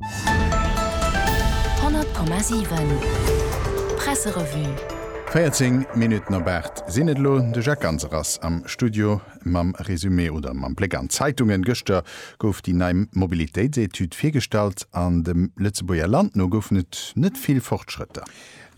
100,7 Presserevue. 14 Minutten op 8 sinn et elo. De Jacques Ganser ass am Studio mam Resumé oder mam Bléck an d'Zeitungen. Gëschter gouf déi nei Mobilitéitsetüd virgestallt an dem Lëtzebuerger Land no goufen et net vill Fortschrëtter.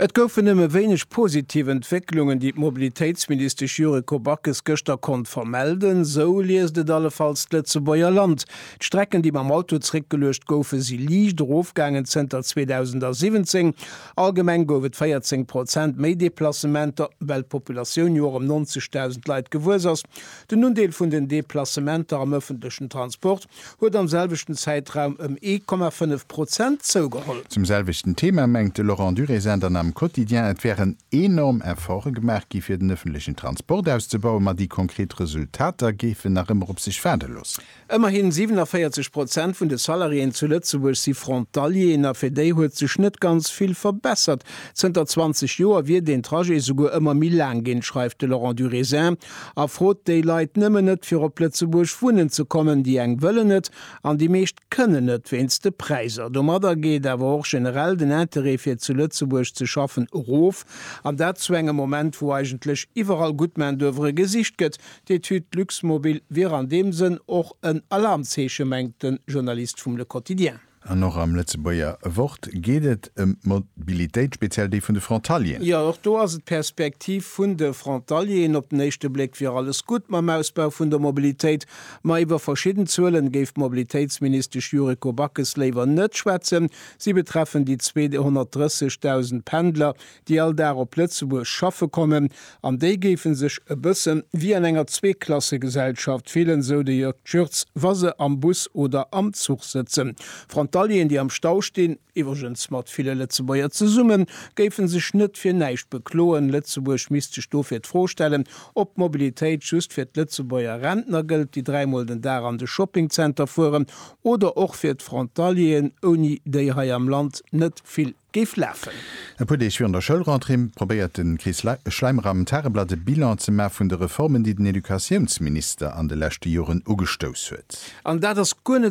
Et goufen nëmme wéineg positiv Entwécklungen, déi d'Mobilitéitsministesch Yuriko Backes gëschter konnt vermelden. Esou liest et allefalls d'Lëtzebuerger Land. D'Strecken, déi mam Auto zeréckgeluecht goufen, si liicht erofgaangen zënter 2017. Allgemeng gouf et 14 Prozent méi Deplacementer, well d'Populatioun jo och ëm 90.000 Leit gewuess ass. Den Undeel vun den Deplacementer am ëffentlechen Transport huet am selwechten Zäitraum ëm 1,5 Prozent zougeholl. Zum selwechten Thema mengt de Laurent Durézin dann am Quotidien, et wären enorm Efforte gemaach gi fir den ëffentlechen Transport auszebauen, ma déi konkret Resultater géifen nach ëmmer op sech waarde loossen. Ëmmerhi 47 Prozent vun de Salariéen zu Lëtzebuerg si Frontalieren a fir déi huet sech net ganz vill verbessert. Zënter 20 Joer wier den Trajet souguer ëmmer méi laang ginn, schreift de Laurent Durézin. a frot déi Leit nëmmen net fir op Lëtzebuerg wunnen ze kommen, déi eng wëllen et an déi meescht kënnen net wéinst de Präiser. Domadder geet awer och generell den Interêt fir zu Lëtzebuerg ze schaffen erof, an dat zu engem Moment wou eigentlech iwwerall gutt Main d'oeuvre gesicht gëtt. D'Etüd Luxmobil wier an deem Sënn och en Alarmzeeche, mengt de Journalist vum Le Quotidien. An och am Lëtzebuerger Wort geet et ëm d'Mobilitéit, speziell déi vun de Frontalieren. Jo, och do ass et d'Perspektiv vun de Frontalieren. Op den éischte Bléck wier alles gutt mam Ausbau vun der Mobilitéit, ma iwwer verschidden Zuelen géif d'Mobilitéitsministesch Yuriko Backes léiwer net schwätzen. Si betreffen déi 230.000 Pendler, déi all Dag op Lëtzebuerg schaffe kommen, an déi géife sech e bësse wéi an enger Zweeklassegesellschaft fillen, esou de Jörg Tschirtz, wa se am Bus oder am Zuch sëtzen. Frontalieren, déi am Stau stinn, iwwregens mat ville Lëtzebuerger zesummen, géife sech net fir näischt bekloen. Lëtzebuerg misst sech dofir d'Fro stellen, ob d'Mobilitéit just fir d'Lëtzebuerger Rentner gëllt, déi dräimol den Dag an de Shoppingzenter fueren, oder och fir d'Frontalieren, ouni déi hei am Land net vill. géif lafen. E puer Deeg virun der Schoulrentrée probéiert de Chris Schleimer am Tageblatt e Bilan ze maachen vun de Reformen, déi den Educatiounsminister an de leschte Joren ugestouss huet. An dat ass guer net